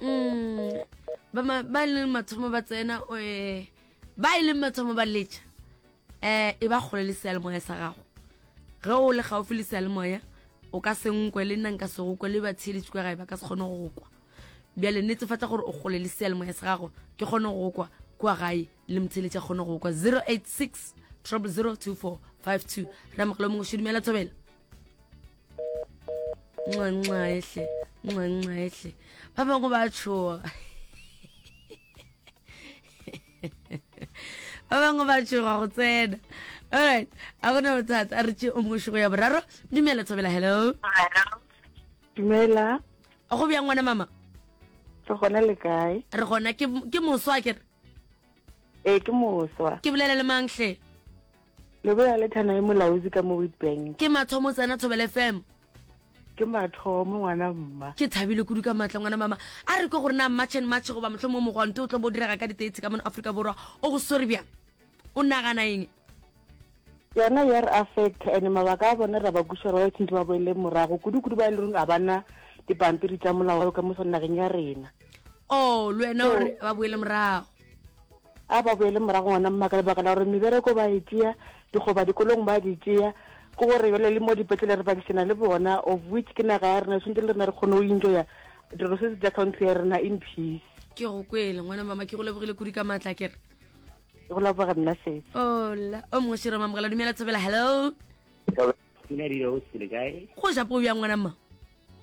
mm ba e leng mathomo ba tsena eh, ba e leng mathomo ba letša um e ba kgole le sealemoya sa gago ge o le gaufi le sealemoya o ka se nkwe le nna nka se go kwe le batheeletši kwa gae ba ka se kgone go go kwa bjale netefatsa gore o kgole le sealemoya sa gago ke kgone go go kwa kwa gae le motheeletši a kgone go go kwa 086 002452 ramogelo mongwe šedumela thobela nxenxehle nxenxehle ba bangwe ba tshoga ba bangwe ba tshoga go tsena alright a gona bothata a re tse o mošogo ya boraro dumela thobela hello dumela go bjang ngwana mama re gona le kae re gona ke moswa ke re ee ke moswa ke bolela le manghle Leboya le Thanae Molaozi ka mo Witbank. Ke mathomo o tsena Thobela FM. Ke mathomo ngwana mma. Ke thabile kudu ka matla ngwana mama. A re kwe gore na March and March goba mohlomong mogwanto o tlo bo direga ka di 30 ka mono Afrika Borwa o go swere bjang? O nagana eng? Yona ya re affect and mabaka a bona ra ba kuša ba since ba boele morago kudu kudu ba e leng a bana dipampiri tsa molao ka mo nageng ya rena. Oh, le wena o re ba boele morago. A ba boele morago ngwana mmaka lebaka la gore mebereko ba e tšea dikgoba dikolong ba di tšea ke gore bjale le mo dipetlele re bakišana le bona of which ke naga ya rena swantse le rena re kgone go enjoya dilo se se tla country ya rena in peace ke go kwele ngwana mama ke go lebogile kudi ka maatla kere ke go leboga nna setse ola o mongwe shiroma mogala dumela thobela hello Pina di o tsile kae? Go ja po ya ngwana mma.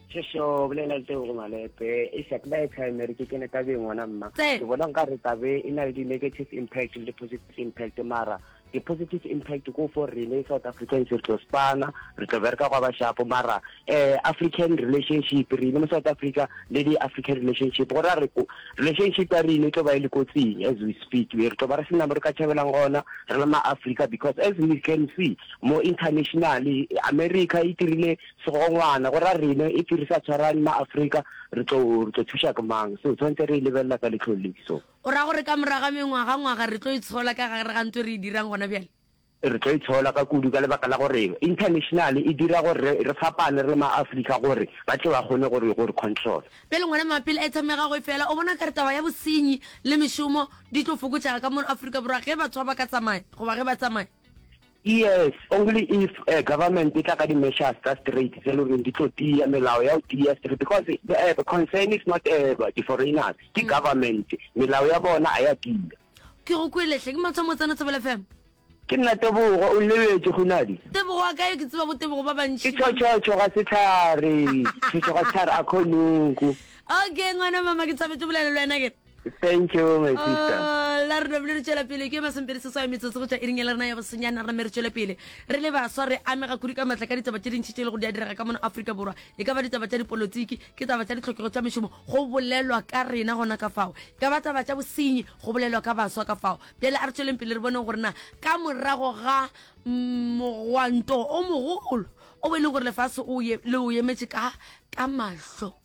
Shosho bolela le go malepe e sa kla e primary ke kene ka be ngwana mma. Ke bona nka re tabe e na le di negative impact le positive impact mara di positive impact ko for rene South Africans re tlo spana re tlo bereka kwa bashapo mara eh African relationship rene mo South Africa le di African relationship go ra re ko relationship ya rene tlo ba e le kotsing as we speak re tlo ba re sena mo re ka tšhabelang gona re le ma Africa because as we can see Mo internationally, America e tirile segongwana go ra rene if re sa tshwarane ma Africa re tlo re tlo thuša ke mang so tshwantse re e lebelela ka letlho le so. O ra gore ka morago ga mengwaga ngwaga re tlo e tshola ka gare ga ntwe re e dirang gona bjale? Re tlo e tshola ka kudu ka lebaka la gore internationally e dira gore re re fapane re le ma Africa gore ba tle ba kgone gore gore control. Pele ngwana mapele a itshamega go e fela o bona kare taba ya bosenyi le mešomo di tlo fokotšega ka mono Africa Borwa ge batho ba ba ka tsamaya goba ge ba tsamaya? Yes, only if uh, government e tla ka di-measures tsa straight tse loreng di tlo tiya melao ya go tiya straight because the, uh, the concern is not uh, di-foreigners ke mm. government melao ya bona a ya tiya ke go kweletlhe ke matswa motsana tsebela fm ke nna tebogo o lebetse gonadi tebogo wa kae ke tseba bo tebogo ba bantši ke tšhotšhotšho ga setlhare tšhotšho ga setlhare a kgonoku okay ngwana mama ke tshabetse bolelelo wena ke Thank you, my sister. Ah, la rena bile re tšwela pele ke masempedi se swae metsotso go tšwa iring ya le rena ya bosenyana rena me re tšwele pele re le baswa re amega kudu ka maatla ka ditaba tše dintšhi tše e le gore di a direga ka mona aforika borwa e ka ba ditaba tša dipolotiki ke taba tša ditlhokego tša mešomo go bolelwa ka rena gona ka fao e ka ba taba tša bosenyi go bolelwa ka baswa ka fao bjale a re tšweleng pele re boneng gore na ka morago ga mm, mogwanto o mogolo o bo e leng gore lefase o ye- le o emetše ka ka mahlo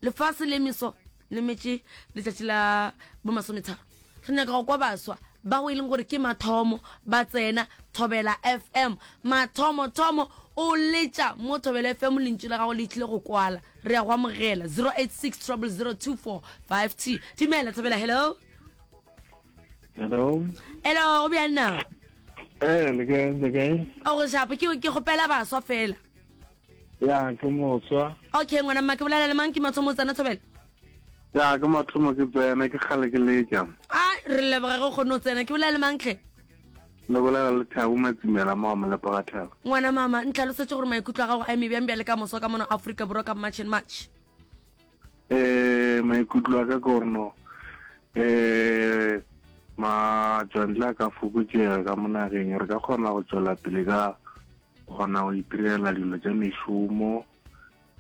lefase le meso le metse letsatsi la bomasometharo re nyaka go kwa baswa bao e leng gore ke mathomo ba tsena thobela fm mathomo thomo o letša mo thobela fm lentši la gago le tlile go kwala re ya go amogela 086 0002452 timela thobela hello hello hello go bjang na eh le kae le kae o go shapo ke ke gopela baswa fela ya ke motswa okay ngwana mma ke bolela le mang ke mathomo o tsena thobela ya ke mathomo ke tsena ke kgale ke letša a re leboga ge o kgone o tsena ke bolela le mangtlhe le bolela le thabo matsimela mo mo lepoga thabo ngwana mama ntlhalosetse gore maikutlo a gago a eme bjang bjale ka moso ka mono aforika borwa ka march and march eh maikutlo a ka ke gore no eh matšwantle a ka fokotšega ka monageng re ka kgona go tswela pele ka kgona go itirela dilo tša mešomo